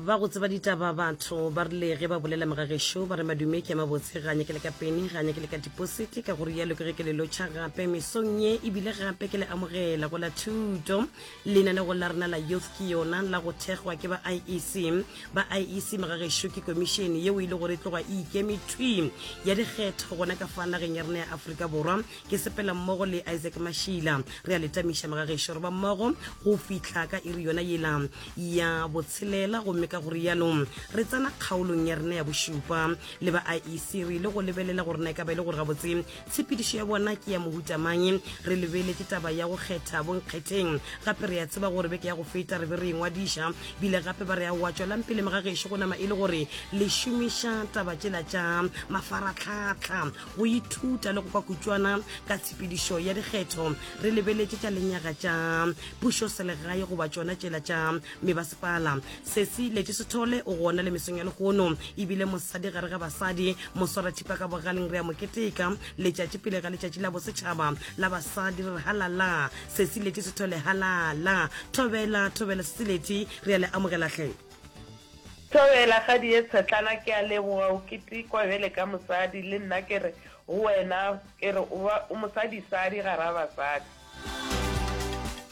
ba go tseba ditaba batho ba rile ge ba bolela megagešo ba re madume ke mabotse ga nyake le ka pene ga nyake le ka dipositi ka gore yalo ke ge ke le lotšha gape mesong ye ebile gape ke le amogela go la thuto lenanego la rena la youth ke yona la go thekgwa ke ba iec ba iec megagešo ke komišene yeo e le gore e tloga e ikeme thwi ya dikgetho gona ka fa nageng ya rena ya aforika borwa Ke sepela mmogo le Isaac Mashila. Re a le tamiša mga gešo re ba mmogo go fihla ka iri yona yela ya botshelela gomme ka go rialo re tsena kgaolong ya rena ya bošupa. Le ba IEC re ile go lebelela gore na e ka ba e le gore gabotse tshepedišo ya bona ke ya mohuta mang. Re lebeletše taba ya go kgetha bonkgetheng gape re a tseba gore beke ya go feta re be re e ngwadiša bile gape ba re a wa tšwelang pele mga gešo go nama e le gore le šomiša taba tšela tša mafaratlhatlha go ithuta le go kwa kutšwana ka tshepedišo ya dikgetho re lebeletše tša lenyaga tša pušo selegae goba tšona tšela tša mebasepala sesi leti sethole o gona le mesong ya lehono ebile mosadi gare ga basadi moswarathipa ka bogaleng re a moketeka letšatši pele ga letšatši la bosetšhaba la basadi re re halala sesi leti sethole halala thobela thobela sesi leti re a le amogelahle Thobela, kgadi ye tshetlana, ke a leboga o ketekwa bjale ka mosadi, le nna ke re go wena, ke re o ba o mosadisadi gara basadi.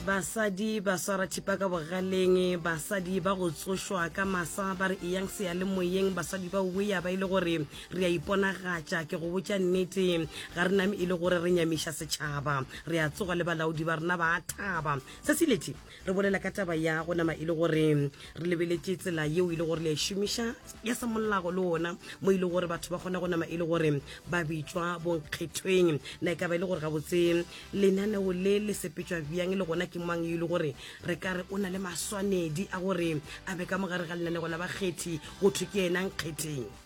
Basadi ba swara thipa ka bogaleng, basadi ba go tsošwa ka masa, ba re eyang seyalemoyeng, basadi ba wea ba e le gore re a iponagatša, ke go botša nnete, ga re name e le gore re nyamiša setšhaba, re a tsoga le balaodi ba rena ba a thaba. Sesilethi, Re bolela ka taba ya go nama e le gore re lebeletše tsela yeo e le gore le a e šomiša ya semolago le ona mo e le gore batho ba kgona go nama e le gore ba bitšwa bonkgethweng. Na e ka ba e le gore gabotse lenaneo le le sepetšwa bjang le gona ke mang yo e le gore re ka re o na le maswanedi a gore a be ka mogare ga lenaneo la bakgethi go thwe ke yena nkgetheng?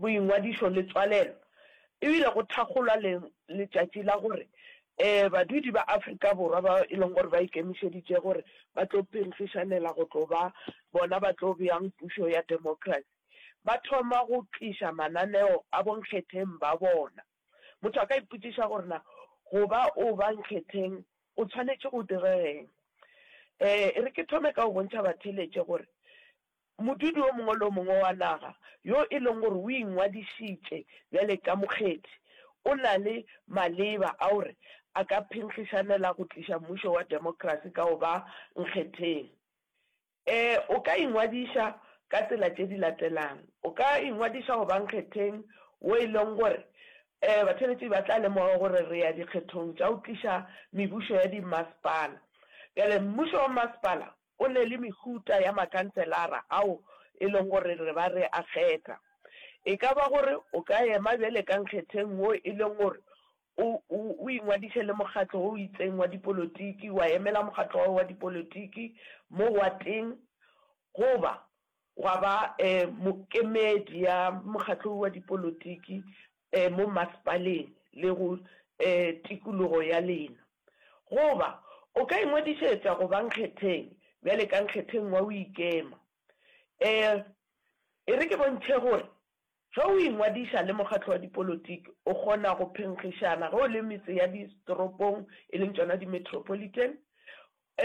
Boingwadišo le tswalelo e bile go thakgolwa le letšatši la gore badudi ba Afrika Borwa bao e leng gore ba ikemišeditše gore ba tlo phenkgišanela go tlo ba bona ba tlo beang pušo ya democracy ba thoma go tliša mananeo a bonkgetheng ba bona. Motho a ka ipotšiša gore na go ba o ba nkgetheng o tshwanetše go direga eng. E re ke thome ka go bontšha batheeletše gore Modudi o mongwe le o mongwe wa naga yo e leng gore o ingwadišitše bjale ka mokgethi o na le maleba a gore a ka phenkgišanela go tliša mmušo wa demokrasi ka go ba nkgetheng. E, o ka ingwadiša ka tsela tše di latelang. O ka ingwadiša go ba nkgetheng wo e leng gore e, batheeletši ba tla lemoga gore re ya dikgethong tša go tliša mebušo ya dimmasepala. Bjale mmušo wa mmasepala Go na le mehuta ya makhanselara ao e lego gore re ba re a kgetha. E ka ba gore o ka ema bjale ka nkgetheng wo e lego gore o, o, o ingwadiše le mokgatlo wo o itseng wa dipolotiki, wa emela mokgatlo wa gago wa dipolotiki mo wateng, goba Gwa ba mokemedi ya mokgatlo wa dipolotiki mo masepaleng le go tikologo ya lena. Goba o ka ingwadišetša go ba nkgetheng bjale ka nkgetheng wa go ikema. E re ke bontšhe gore Ge o ingwadiša le mokgatlo wa dipolotiki, o kgona go phenkgišana ge o le metse ya ditoropong, e leng tšona di-metropolitan,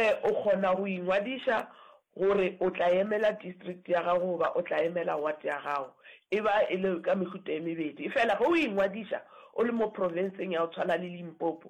e, o kgona go ingwadiša gore o tla emela district ya gago goba o tla emela ward ya gago. E ba e le ka mehuta e mebedi. Efela ge o ingwadiša o le mo profenseng ya go tshwana le Limpopo,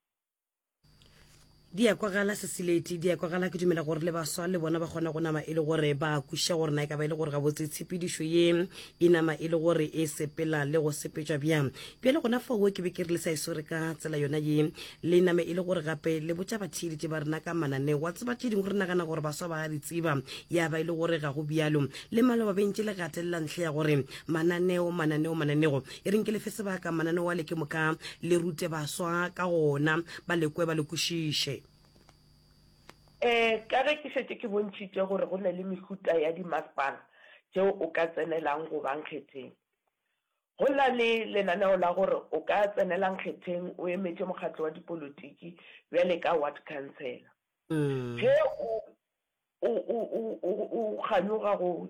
di ya kwagala sesileti di ya kwagala ke dumela gore le baswa le bona ba kgona go nama e le gore ba kweša gore na e ka ba e le gore gabotse tshepedišo ye e nama e le gore e sepela le go sepetšwa bjang bjale gona foo ke be ke re le sa e swere ka tsela yona ye le name e le gore gape le botša batheeletše ba rena ka mananeo wa tseba tše dingwe re nagana gore baswa ba a di tseba ya ba e le gore ga go bjalo le maloba bentše le gatelela ntlha ya gore mananeo mananeo mananeo e reng ke lefe sebaka mananeo a le ke moka le rute baswa ka gona ba lekwe ba le kwešiše um ka ge ke šetše ke bontšhitše gore go ne le mehuta ya dimasepala tšeo o ka tsenelang go ba nkgetheng go na le lenaneo la gore o ka tsenela nkgetheng o emetše mokgatlo wa dipolotiki bjale ka ward councilor mm. ge o o kganyoga go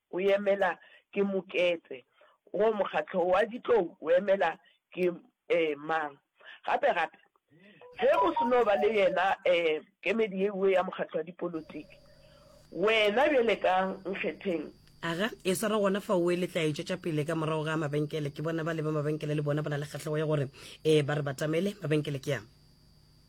o emela ke Moketse, goba mokgatlo wa ditlou o emela ke mang. Gape gape, ge go se no ba le yena kemedi ye nngwe ya mokgatlo wa dipolotiki, wena bjale ka nkgetheng. Aga, e swara gona fao o e letla e tšwetša pele ka morago ga mabenkele. Ke bona ba leba mabenkele le bona ba na le kgahlego ya gore ba re batamele. Mabenkele ke a.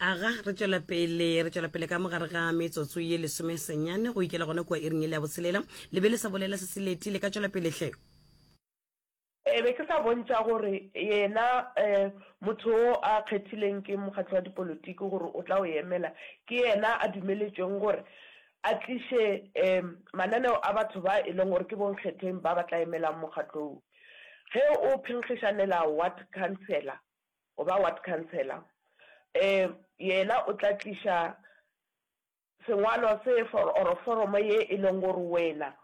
aga re tswela pele re tswela pele ka mogare ga metsotso ye lesome senyane go ikela gona kua iring e le ya botshelela le be le sa bolela se se leti le ka tswela pele hle e be ke sa bontša gore yena um motho o a kgethileng ke mokgatlo wa dipolotiki gore o tla o emela ke yena a dumeletšweng gore a tliše um mananeo a batho ba e leng gore ke bonkgetheng ba ba tla emelang mokgatlo o ge o phenkgišanela ward councilor goba ward councillor e yena o tla tliša sengwalo se for or foromo ye e leng gore wena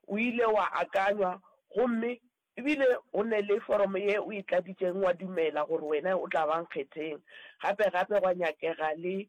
o ile wa akanywa gomme ebile o ne le foromo ye o e tladitšeng wa dumela gore wena o tla ba nkgetheng gape gape gwa nyakega le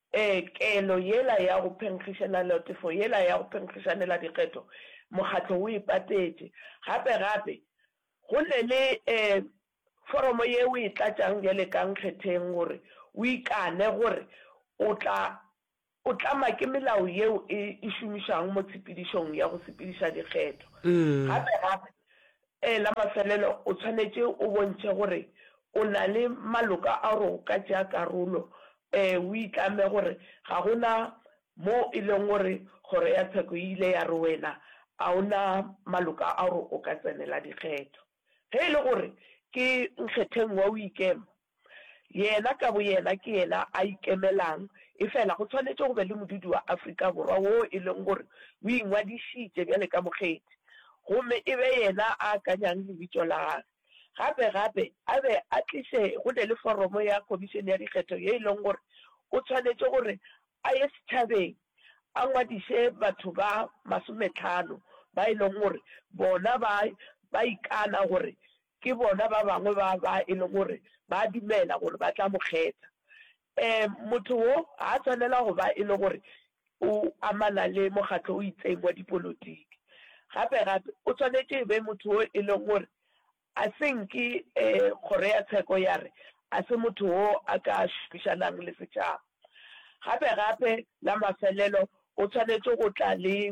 Ee, kelo yela ya go phenkgišelalotefo yela ya go phenkgišaneladikgetho, mokgatlo o e patetše. Gape, gape, go ne le, ee, foromo ye o e tlatšang bjale ka nkgetheng gore o ikane gore o tla, o tlama ke melao yeo e, e šomišwago mo tshepedišong ya go sepediša dikgetho. Gape, gape, Ee, la mafelelo o tshwanetše o bontšhe gore o na le maloka a gore o ka tšea karolo. Ee, o itlame gore ga go na mo e lego gore Kgoro ya Tsheko e ile ya re wena a o na maloka a gore o ka tsenela dikgetho. Ge e le gore ke nkgetheng wa o ikema, Yena ka boyena ke yena a ikemelang, efela go swanetše go be le modudi wa Afrika Borwa woo e lego gore o ingwadišitše bjale ka mokgethi gomme e be yena a akanyang lebitšo la gagwe. Gape gape a be a tliše go ne le foromo ya Khomišene ya Dikgetho ye e lego gore o swanetše gore a ye setšhabeng a ngwadiše batho ba masometlhano ba e lego gore bona ba ikana gore Ke bona ba bangwe ba ba e le gore ba a dumela gore ba tla mo kgetha. Ee, motho wo ga a swanela go ba e le gore o amana le mokgatlo o itseng wa dipolotiki. Gape-gape, o swanetše e be motho wo e leng gore a se nke Kgoro ya Tsheko ya re a se motho wo a ka šomišanang le setšhaba. Gape-gape, la mafelelo o swanetše go tla le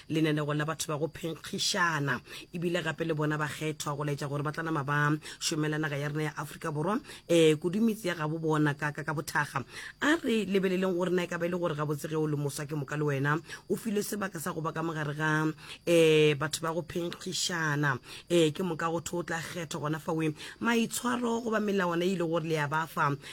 lenanegong la batho ba go phenkgišana ebile gape le bona ba kgethwa go laetša gore ba tla nama ba šomela naga ya rena ya aforika borwa um kudu metse ya gabo bona ka ka bothaga a re lebeleleng gore na e ka ba e le gore gabotse ge o le moswa ke moka le wena o filwe sebaka sa go ba ka mogare ga um batho ba go phenkgišana um ke moka go tho o tla kgethwa gona fawe maitshwaro goba melawana e ile gore le ya ba fa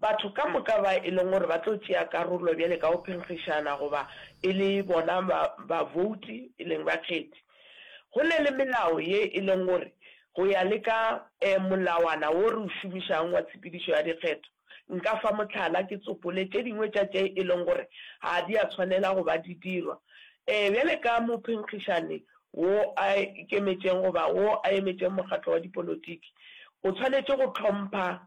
Batho ka moka ba e leng gore ba tlo tšea karolo bjale ka go phenkgišana goba e le bona bavouti, e leng bakgethi. Go na le melao ye e leng gore go ya le ka molawana wo re o šomišang wa tshepedišo ya dikgetho. Nka fa mohlala, ke tsopole tše dingwe tša tše e leng gore ga di a tshwanela go ba di dirwa. Bjale ka mophenkgišani wo a ikemetšeng goba wo a emetšeng mokgatlo wa dipolotiki, o tshwanetše go hlompha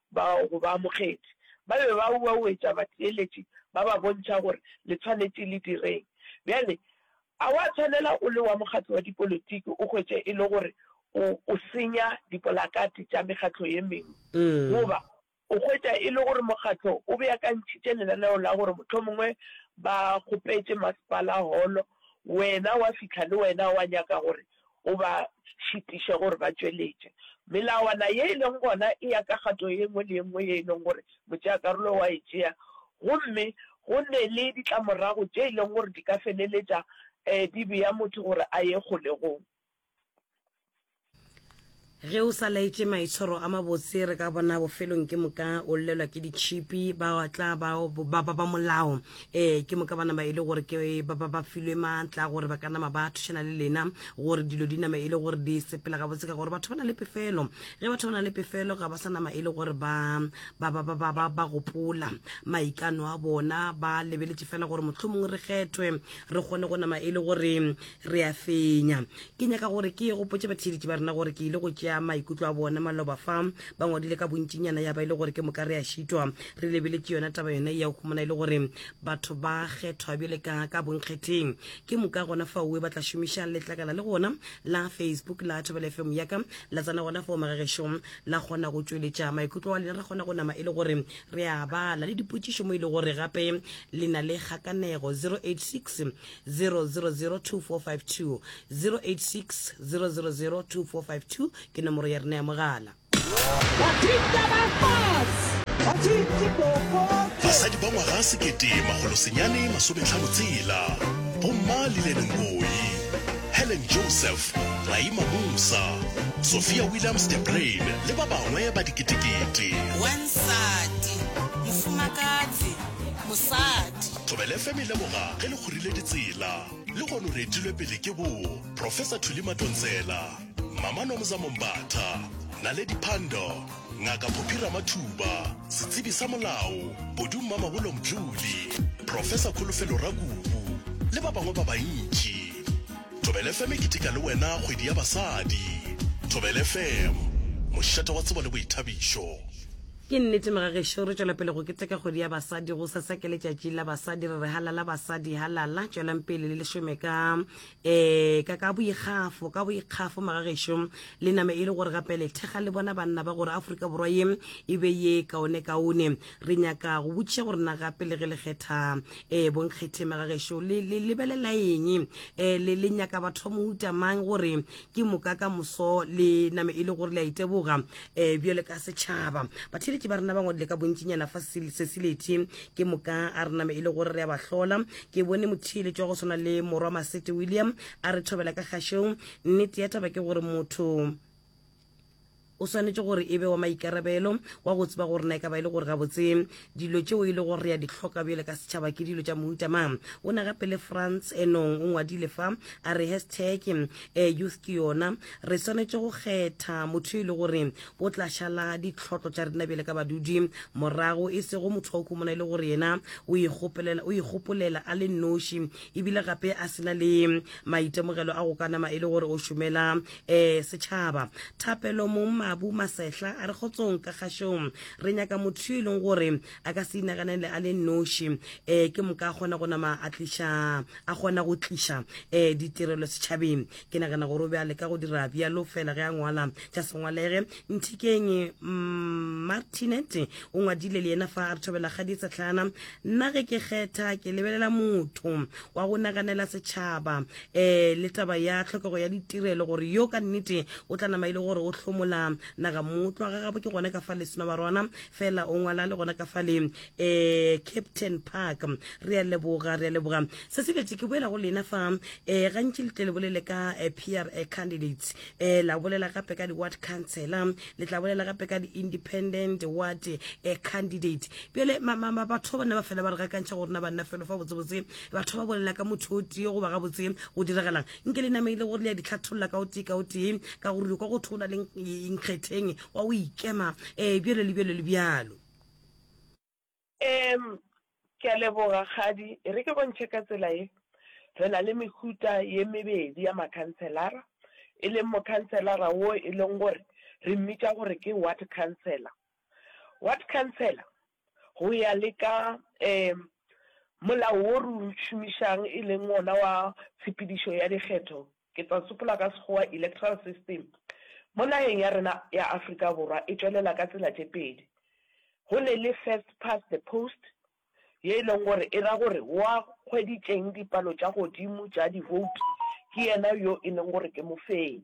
bao go baamogedi ba be ba uauetša batheeletši ba ba bontšha gore le tshwanetše le direng. Bjale, a wa tshwanela o le wa mokgatlo wa dipolotiki o hwetše e le gore o, o senya dipolakate tša mekgatlo ye mengwe, goba o hwetša e le gore mokgatlo o beakantšhitše lenaneo la gore mohlomongwe ba kgopetše masepala holo, wena wa fihla le wena wa nyaka gore o ba šitiše gore ba tšweletše melawana ye e lego gona e ya ka kgato ye nngwe le ye nngwe ye e lego gore motšeakarolo wa e tšea, gomme go nne le ditlamorago tše e lego gore di ka feleletša di bea motho gore a ye kgolegong. Ge o sa laetše maitshwaro a mabotse, re ka bona bofelong ke moka o llelwa ke ditšhipi, ba tla ba ba ba ba molao. Ee, ke moka ba nama e le gore ke ba ba ba filwe maatla a gore ba ka nama ba thušana le lena, gore dilo di nama e le gore di sepela gabotse, ka gore batho ba na le pefelo. Ge batho ba na le pefelo, ga ba sa nama e le gore ba ba ba ba ba ba ba gopola maikano a bona, ba lebeletše fela gore mohlomong re kgethwe, re kgone go nama e le gore re a fenya ke nyaka gore ke ye gopotse batheeletši ba rena gore ke ile go tšea maikutlo a bone maloba fa ba ngwadile ka bontšinyana ya ba e le gore ke moka re a šitwa re lebeletše yona taba yone ya humana e le gore batho ba kgethwa bjale ka ka bonkgetheng ke moka gona fa oe ba tla šomiša letlakala le gona la facebook la thobela fm yaka la tsena gona fao magagešo la kgona go tšweletša maikutlo wa lena ra kgona go nama e le gore re a bala le dipotšišo mo e le gore gape le na le kgakanego 086 0002452 086 ke nomoro ya rena ya mogala basadi ba ngwaga sekete magolosenyane masometlhano tsela bomma lilenenkoi helen joseph raima musa sophia williams de brain le ba bangwe ba diketekete wa nsati mofumakatsi mosadi Thobela FM e leboga ge le kgorile ditsela. Lehono re etilwe pele ke bo Professor Thuli Matontsela, Mama Nomza Mombatha, Naledi Pandor, Ngaka Phophi Ramathuba, Setsebi sa Molao, Kodu Mmamabolo Mdluli, Professor Kholofelo Rakubu le ba bangwe ba bantši. Thobela FM e keteka le wena kgwedi ya basadi. Thobela FM, mošate wa tsebo le boithabišo. Ke nnete mga gešo, re tšwela pele go keteka kgwedi ya basadi. Go sa sa ke letšatši la basadi, re re halala basadi, halala. Tšwelang pele le le šome ka eh ka ka boikgafo, ka boikgafo mga gešo. Le name e le gore gape le thekga le bona banna ba gore Afrika Borwa ye e be ye kaone kaone. Re nyaka go botšiša gore na gape le ge le kgetha eh bonkgethe mga gešo le le lebelela eng? Eh le le nyaka batho ba mohuta mang gore ke moka ka moso le name e le gore le a iteboga um eh, bjale ka setšhaba batheletši ba rena ba ngwadile ka bontšinyana fa sesilethi ke moka a re name e le gore re ya ba hlola ke bone motheletši wa go swana le morwa masete william a re thobela ka kgašong nnete ya taba ke gore motho O swanetše gore e be wa maikarabelo wa go tseba gore na e ka ba e le gore gabotse dilo tšeo e le gore re a di hloka bjale ka setšhaba ke dilo tša mohuta mang. O na gape le France enong o ngwadile fa a re hashtag eh, youth ke yona. Re swanetše go kgetha motho yo e le gore o tla šala ditlhotlo tša rena bjale ka badudi morago, e sego motho wa o khumona e le gore yena o ikgopolela, o ikgopolela a le nnoši ebile gape a sena le maitemogelo a go ka nama e le gore o šomela Eh, setšhaba thapelo mong mabu masehla a re kgotsong ka kgašong re nyaka motho yo e leng gore a ka se inaganele a le noši um eh, ke moka a kgona go nama a tliša a kgona go tliša um eh, ditirelo setšhabeng ke nagana gore o be a leka go dira bjalo fela ge a ngwala tša sengwalege nthikeng mm, martinet o ngwadile le yena fa a re thobela kgadi setlhana nna ge ke kgetha ke lebelela motho wa go naganela setšhaba um le taba ya tlhokego ya ditirelo gore yo ka nnete o tla nama e le gore o hlomola naga motlwa ga gabo ke gone ka fa leseno barwana fela o ngwala le gona ka fa le um eh, captain park re a leboga re a leboga se se betse ke boela go lena fa um gantši le tle le bolele ka eh, p r candidates um la bolela gape ka di-ward councilor le tla bolela gape ka di-independent ward um candidate bjale batho ba bana ba fela ba re gakantšha go rena banna felo fa botsebotse batho ba bolela ka motho o tee goba gabotse go diragalang nke le nameile gore le ya ditlhatholola ka o tee ka o tee ka gore kwa go thwe o na le nkgetheng wa o ikema um bjalo le bjalo le bjalo um ke a leboga kgadi e re ke bontšhe ka tsela e re na le mehuta ye mebedi ya makhanselara e leng mokhanselara wo e leng gore re mmitša gore ke ward councilor ward councilor go ya le ka um molao wo re o šomišang e leng wona wa tshepedišo ya dikgetho, ke tla sopola ka Sekgowa electoral system, mo nageng ya rena ya Afrika Borwa e tšwelela ka tsela tše pedi. Go ne le first past the post, ye e leng gore e ra gore wa hweditšeng dipalo tša godimo tša di vote ke yena yo e leng gore ke mofenyi.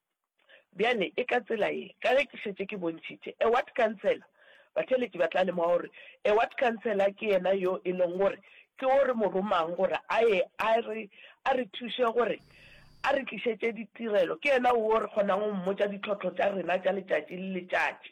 Bjale, e ka tsela ye, ka ge ke šetše ke bontšhitše, a ward councillor, batheeletši ba tla lemoga gore a ward councillor ke yena yo e lego gore ke o re mo romang gore a ye a re, a re thuše gore a re tlišetše ditirelo, ke yena wo re kgonago go mmotša ditlhohlo tša rena tša letšatši le letšatši.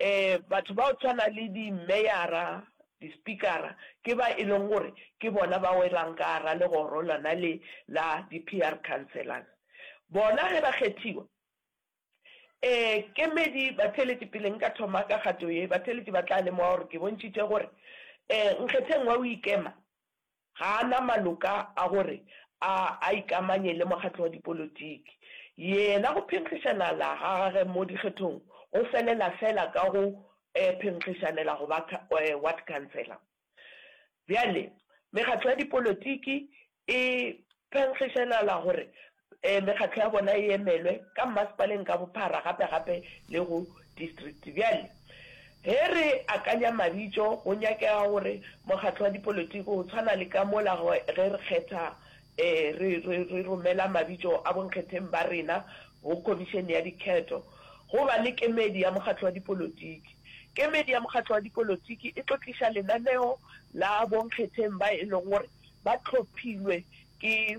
um batho ba go tshwana le di meyara, di spikara ke ba e leng gore ke bona ba welang ka gara legoro lona le la di PR councillors. Bona ge ba kgethiwa um kemedi batheeletši pele nka thoma ka kgato ye, batheeletši ba tla lemoga gore ke bontšhitše gore um nkgetheng wa go ikema Ga a na maloka a gore a a ikamanye le mokgatlo wa dipolotiki. Yena go phenkgišana la ga gage mo dikgethong go felela fela ka go phenkgišanela go ba ward councillor. Bjale mekgatlo ya dipolotiki e phenkgišanala gore Ee, mekgatlo ya bona e emelwe ka mmasepaleng ka bophara, gape gape le go distrikte. Bjale, ge re akanya mabitšo, go nyakega gore mokgatlo wa dipolotiki, go tshwana le ka mola ge re kgetha, ee, re, re, re romela mabitšo a bonkgetheng ba rena go Khomišene ya Dikgetho, go ba le kemedi ya mokgatlo wa dipolotiki. Kemedi ya mokgatlo wa dipolotiki e tlo tliša lenaneo la bonkgetheng ba e lego gore ba tlhophilwe ke.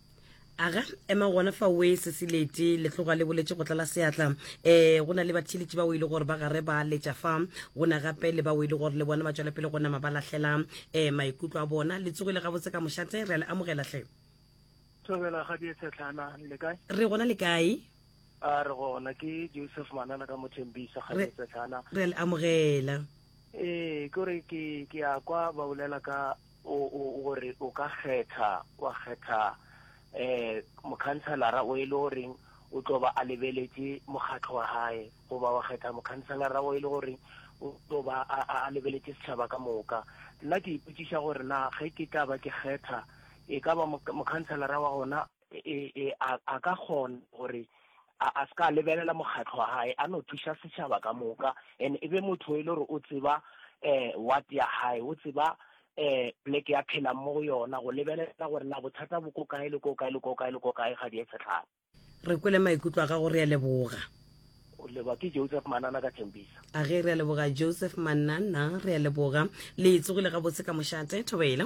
aga ema gona fa we se se lete le tloga le boletše go tlala seatla um go na le batheletši bao e le gore ba gare ba letša fa go na gape le bao e le gore le bona ba tšwela pele go nama ba lahlela um maikutlo a bona le tsogile gabotse ka mošate re a le amogela hle thobela ga dietshetlhana le kae re gona le kae a re gona ke joseph manana ka mothembisa ga dietshetlhana re a le amogela ee kore ke ke a kwa ba bolela ka O, o, gore o ka kgetha, wa kgetha um mokhanselara o e le goreng o tlo ba a lebeletše mokgatlo wa gae, goba wa kgetha mokhanselara o e le gore o tlo ba a, a, a lebeletše setšhaba ka moka. Nna ke ipotšiša gore na ge ke tla ba ke kgetha, e ka ba mokhanselara wa gona e, e, a, a ka kgona gore a, a se ka lebelela mokgatlo wa hae a no thuša setšhaba ka moka and e be motho e le gore o tseba eh what ya hae o tseba eh pleke ya phelang mo go yona go lebelela gore na bothata bo ko kae le ko kae le ko kae le ko kae ga di e setlhaba re kwele maikutlo a gago re a leboga o leba ke joseph manana ka thembisa a ge re a leboga joseph manana re a leboga le tsogile gabotse ka mošate thobela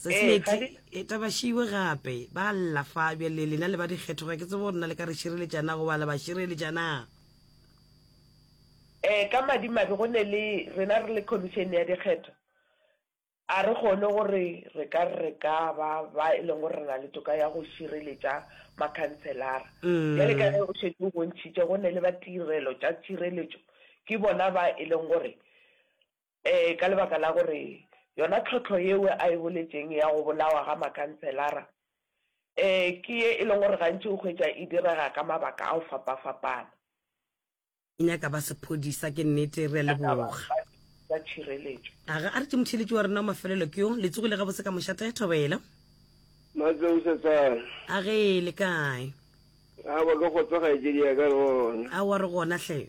sesmeti e tabašiwe gape ba lla fa bjale lena le ba dikgethoga ke tsebo rena le ka re šireletšana go bala ba šireletšana um ka madimabe go ne le rena re le commission ya dikgetho a re kgone gore re ka re ka ba ba e leng gore re na le toka ya go šireletša makhanselara mm. bjale ka ge o šetse o bontšhitše go ne le ba tirelo tša tšireletšo ke bona ba e leng gore Ee, ka lebaka la gore yona tlhohlo yeo a e boletšeng ya go bolawa ga makhanselara, ee, ke ye e leng gore gantši o hwetša e direga ka mabaka a go fapafapana. O nyaka ba sephodisa, ke nnete. Re a leboga. Tsa tšhireletšo. A ga a re tše motheeletši wa rena wa mafelelo ke yo? Le tsogile gabotse ka mošate, ge Thobela? Matseo Setsana. A ge, le kae? Aowa, ke kgotsa kgaetšedi ya ka, re gona. Aowa, re gona hle.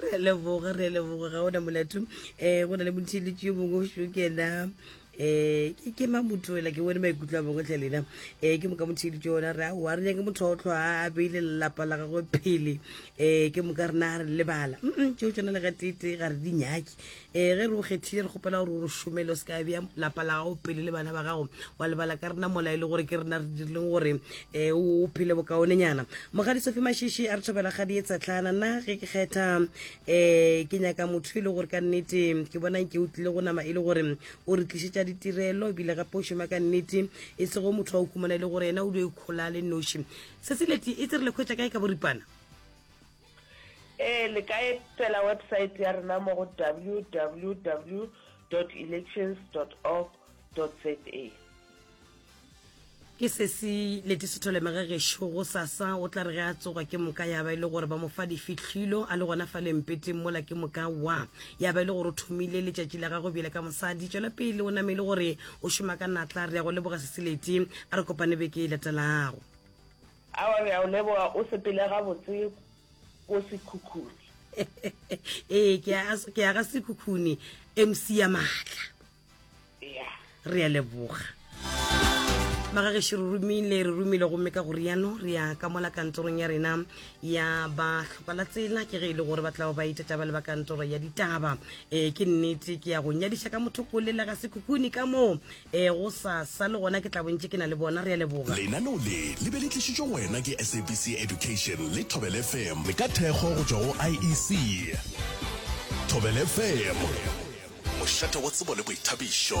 re a leboga re a leboga ga ona molato um eh, go na le motheletši yo mongwe šo kena um eh, ke ke mamotoela ke bone maikutlo a bongwe tle lena um ke moka motheletši ona re aowa re nyake motho otlho a a beile lelapa la gagwe phele um ke moka rena a re lebala mm tšeo tsona le gatete ga re di nyake Ee, ge re o kgethile, re kgopela gore o re šomele, o se ka bea lapa la gago pele le bana ba gago, wa lebala ka rena mola e le gore ke rena re dirileng gore um o phele bokaonenyana. Mokgadi Sofi Mashishi a re thobela kgadi e tshetlana, nna ge ke kgetha um ke nyaka motho e le gore ka nnete ke bona nke o tlile go nama e le gore o re tlišetša ditirelo ebile gape o šoma ka nnete e sego motho wa o kumana e le gore yena o dio ikgola le noši seseleti e tse re le kgwetša kae ka boripana Ee, le ka etela website ya rena mo go www elections org za. ke sesi letisetholemege gešo go sasa o tla re ge a tsoga ke moka ya ba e le gore ba mo fa difihlwilo a le gona fa lempeteng mola ke moka wa ya ba e le gore o thomile letšatši la gagwe bjele ka mosadi tšwela pele o name e le gore o šoma ka natla re ya go leboga seseleti a re kopane beke e latelago Awa re a o leboga o sepele gabotse ko sekhukhune. ee ke a ke a ga sekhukhune mc ya maatla Yeah. re a leboga magageše re romile re romile gomme ka go riano re ya ka mola kantorong ya rena ya ba tlhoka la tsela ke ge e le gore ba tlago ba itata ba le ba kantoro ya ditaba um ke nnete ke ya go nyadiša ka motho ko lela ga sekhukhune ka moo Ee, gosasa le gona ke tla bontše ke na le bona. Re a leboga. Lenaneo le le be le tlišitšwe go wena ke SABC Education le Thobel FM. Le ka thekgo go tšwa go IEC. Thobel FM, mošate wa tsebo le boithabišo.